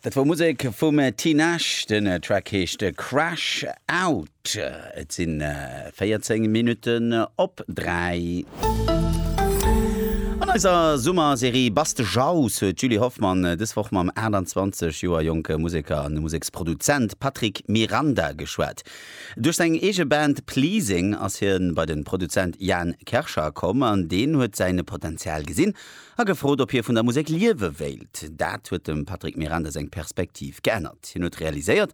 Dat wor Musek vum Tinashe, den Track heescht Crash Out. Et sin 14 Minutten op 3. An eiser Summerserie Bass de Jaus huet d'Julie Hoffmann dës Woch mam 28 Joer jonke Museker an Museksproduzent Patrick Miranda geschwat. Duerch seng eege Band Pleasing ass hien bei den Produzent Jan Kerschar komm an deen huet säin Potenzial gesinn A gefrot, ob hie vun der Musek liewe wéilt, dat huet dem Patrick Miranda seng Perspektiv geännert. Hien huet realiséiert,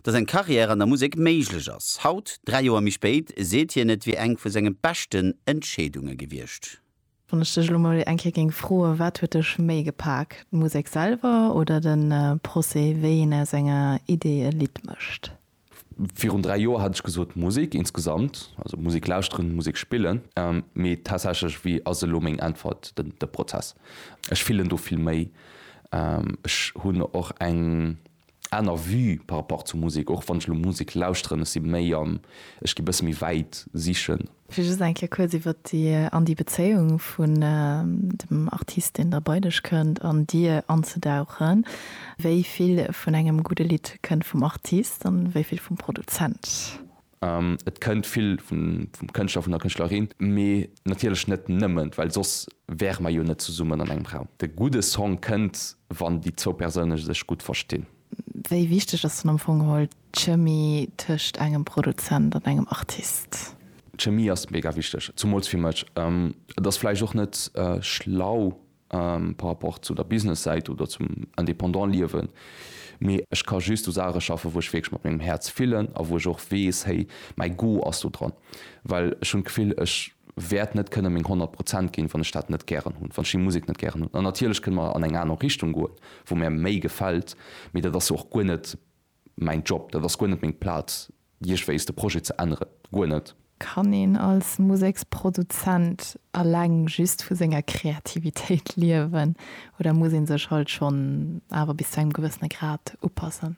datt eng Carrière an der Musek méiglech ass. Haut, dräi Joer méi spéit, seet hien, et wier eng vu senge beschten Entscheedunge gewiescht. Wann ech dech elo mol eng Kéier géing froen, wat huet dech méi gepak, d'Musek selwer oder de Procès, wéi een aus enger Idee e Lidd mécht? Virun dräi Joer hat ech gesot, Musek insgesamt, also Musek lauschteren, Musek spillen. Mee tatsächlech, wéi ass elo meng Äntwert, de Prozess. Ech fillen do vill méi. Ech hunn och eng aner Vue par rapport zur Musek, och wann ech elo Musek lauschteren, ech si méi am, ech gi bësse méi wäit sichen. Fir just eng Kéier kuerz iwwert déi an déi Bezéiung vun dem Artist, deen da bei dech kënnt, an dir anzedauchen, Wéi vill vun engem gudde Lidd kënnt vum Artist an wéi vill vum Produzent? Et kënnt vill vum Kënschtler, vun der Kënschtlerin, mee natierlech net nëmmen, well soss wäre mer jo net zesummen an engem Raum. De gudde Song kënnt, wann déi zwou Persoune sech gutt verstinn. Wéi wichteg ass dann am Fong geholl D'Chemie tëscht engem Produzent an engem Artist. D'Chemie ass mega wichteg, zumools fir mech. Et ass vläicht och net schlau par rapport zu der Business-Säit oder zum Indépendant-Liewen, mee ech ka just u Saache schaffen, wou ech wierklech mat mengem Häerz fillen a wou ech och weess, hey, mäi Go ass do dran. Well ech hunn d'Gefill, ech wäert net kënne meng 100 Prozent ginn, wann ech dat net gären hunn, wann ech déi Musek net gären hunn. An natierlech kënne mer an eng aner Richtung goen, wou mär méi gefält, mee dat ass jo och guer net Mäin Job, dat ass guer net meng Plaz, déi ech wéisst, e Projet ze änneren. Guer net. Kann een als Museksproduzent eleng just vu senger Kreativitéit liewen oder muss ee sech halt schonn awer bis zu engem gewëssene Grad upassen?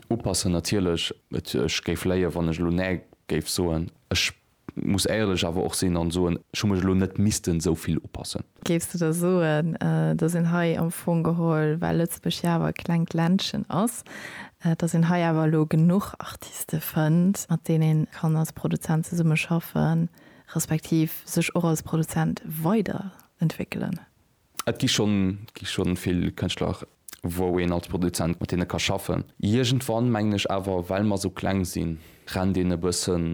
Upassen natierlech. Ech géif léien, wann ech elo näi géif soen. Ech Muss éierlech awer och sinn an soen, ech hu mech elo net missten esou vill upassen. Géifs de da soen, dass een hei am Fong geholl, well Lëtzebuerg jo awer e klengt Ländchen ass, dass een hei awer elo genuch Artiste fënnt, mat deenen een kann als Produzent zesummeschaffen, respektiv sech och als Produzent weiderentwéckelen? Et gi schonn, gi schonn vill Kënschtler, wou een als Produzent mat deene ka schaffen. Iergendwann, mengen ech awer, well mer esou kleng sinn, rennt een e bëssen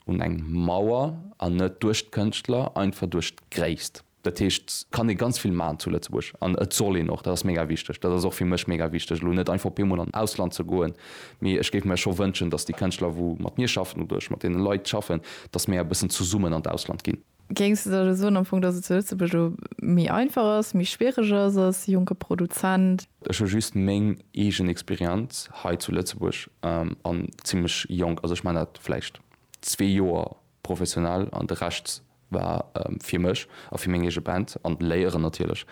un eng Mauer, an net duerch d'Kënschtler, einfach duerch d'Gréisst. Dat heescht, et kann ee ganz vill maachen zu Lëtzebuerg, an et soll een och, dat ass mega wichteg. Dat ass och fir mech mega wichteg, elo net einfach op eemol an d'Ausland ze goen, mee ech géif mir scho wënschen, datt déi Kënschtler, wou mat mir schaffen, oder ech mat deene Leit schaffen, datt mir e bëssen zesummen an d'Ausland ginn. Géings de da elo soen am Fong, datt et zu Lëtzebuerg elo méi einfach ass, méi schwiereg ass als jonke Produzent? Ech hu just meng eegen Experienz hei zu Lëtzebuerg an zimmlech jonk, also ech man dat vläicht zwee Joer professionell an de Rescht war fir mech a fir meng eege Band an Léieren natierlech.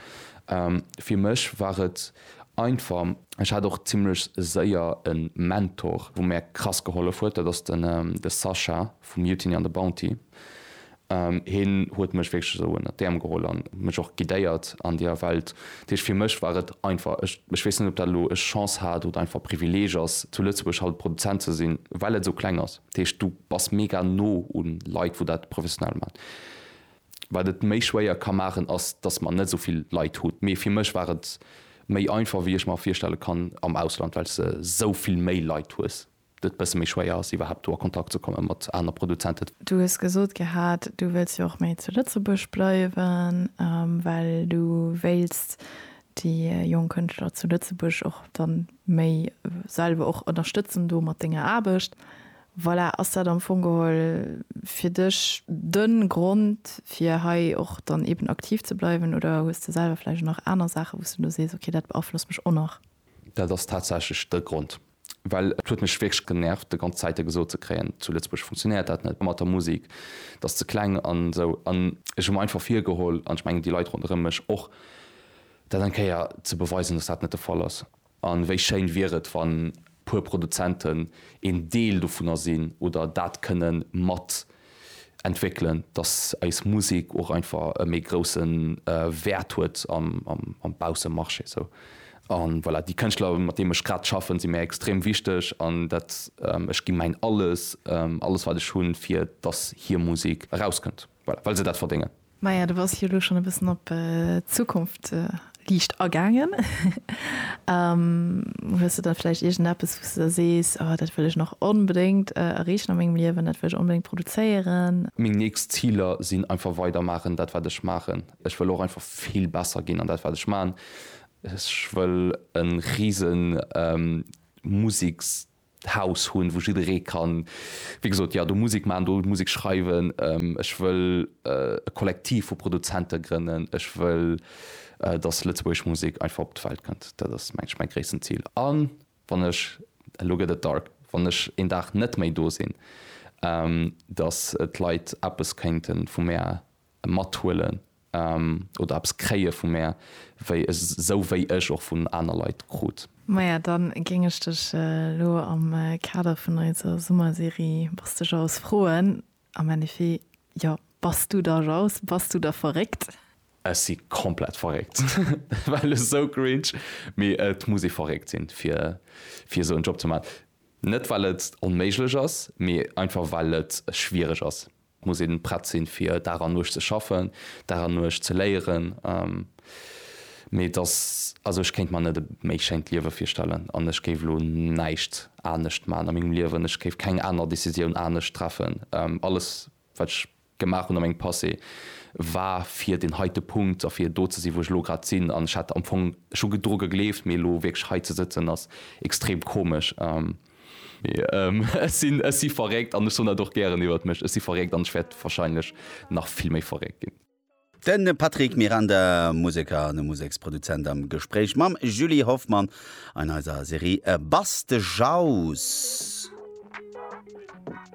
Fir mech war et einfach. Ech hat och zimmlech séier e Mentor, wou mär krass gehollef huet, dat ass de Sascha. Vu Mutiny an The Bounty. Hien huet mech wierklech esou ënnert d'Äerm geholl an mech och guidéiert an deeër Welt. Dat heescht, fir mech war et einfach. Ech weess net, ob dat elo ech Chance hat oder einfach Privileeg ass, zu Lëtzebuerg haut Produzent ze sinn, well et esou kleng ass. Dat heescht, du bass mega no u Leit, wou dat professionell maachen. Wat et méi schwéier ka maachen, ass, dass mer net esou vill Leit hunn. Mee fir mech war et méi einfach, wéi ech mer virstelle kann am Ausland, well s de esou vill méi Leit hues. et bësse méi schwéier ass iwwerhaapt do a Kontakt ze komme mat aner Produzenten. Du hues gesot gehat, du wëlls jo och méi zu Lëtzebuerg bleiwen, well du wéilts déi jonk Kënschtler zu Lëtzebuerg och dann méi selwer och ënnerstëtzen do mat denger Aarbecht. Voilà, ass dat am Fong geholl fir dech den Grond fir hei och dann eben aktiv ze bleiwen oder hues de selwer vläicht och nach aner Saachen wou s de elo sees, okay dat beaflosst mech och nach? Dat ass tatsächlech de Grond. Well et huet mech wierklech genervt de ganz Zäite gesot ze kréien, zu Lëtzebuerg funktionéiert dat net mat der Musik, dat ass ze kleng an esou. An ech hu mer einfach virgeholl, an ech mengen déi Leit ronderëm mech och, dat eng Kéier ze beweisen, datt dat net de Fall ass. A wéi schéin wier et, wann e puer Produzenten een Deel dovunner sinn oder dat kënne mat entwéckelen, dass eis Musek och einfach e méi grousse Wäert huet am Baussemarché esou. An voilà, déi Kënschtler, mat deem ech grad schaffen, si mir extrem wichteg an dat, ech gi mäin Alles, alles wat ech hunn, fir dass hir Musek erauskënnt, voilà, well se dat verdéngen. Maja, du bass jo elo schonn e bëssen op d'Zukunft liicht agaangen. Hues de da vläicht iergendeppes, wou s de da sees, Oh, dat wëll ech nach onbedéngt erreechen a mengem Liewen, dat wëll ech onbedéngt produzéieren? Meng nächst Ziler sinn einfach weider maachen dat, wat ech maachen. Ech wëll och einfach vill besser ginn an dat, wat ech maachen. Ech wëll e rise Museksjob Haus hunn, wou jidderee kann, wéi gesot, jo, do Musek maachen, do Musek schreiwen. Ech wëll e Kollektiv vu Produzente grënnen. Ech wëll, dass lëtzebuergesch Musek einfach op d'Welt kënnt. Dat ass, mengen ech, mäi gréissten Zil. A wann ech, elo gëtt et dark, wann ech een Dag net méi do sinn, dass d'Leit eppes kéinte vu mär mathuelen oder eppes kréie vu mär, wéi esou wéi ech och vun aner Leit krut. Maja, dann géing ech dech elo am Kader vun eiser Summerserie Bass de Jaus? froen, am Endeffet, jo, bass du da Jaus? Bass du da verréckt? Ech si komplett verréckt. Well esou cringe, mee et muss ee verréckt sinn, fir fir esou en Job ze man. Net well et onméiglech ass, mee einfach well et schwiereg ass. Et muss een prett sinn, fir Dag an Nuecht ze schaffen, Dag an Nuecht ze léieren. Mee et ass, also ech kéint mer net e méi schéint Liewe virstellen an ech géif elo näischt anescht maachen a mengem Liewen. Ech géif keng aner Decisioun anescht treffen. Alles, wat ech gemaach hunn a mengem Passé, war fir deen heite Punkt a fir do ze sinn, wou ech elo grad sinn. An ech hat am Fong, ech hu dru gegleeft, mee elo wierklech hei ze sëtzen, ass extrem komesch. Mee ech sinn, ech si verréckt an ech soen dat och gären iwwert mech, ech si verréckt an ech wäert wahrscheinlech nach vill méi verréckt ginn. De Patrick Miranda, Museker an Museksproduzent am Gespréich mam Julie Hoffmann an eiser Serie Bastejaus.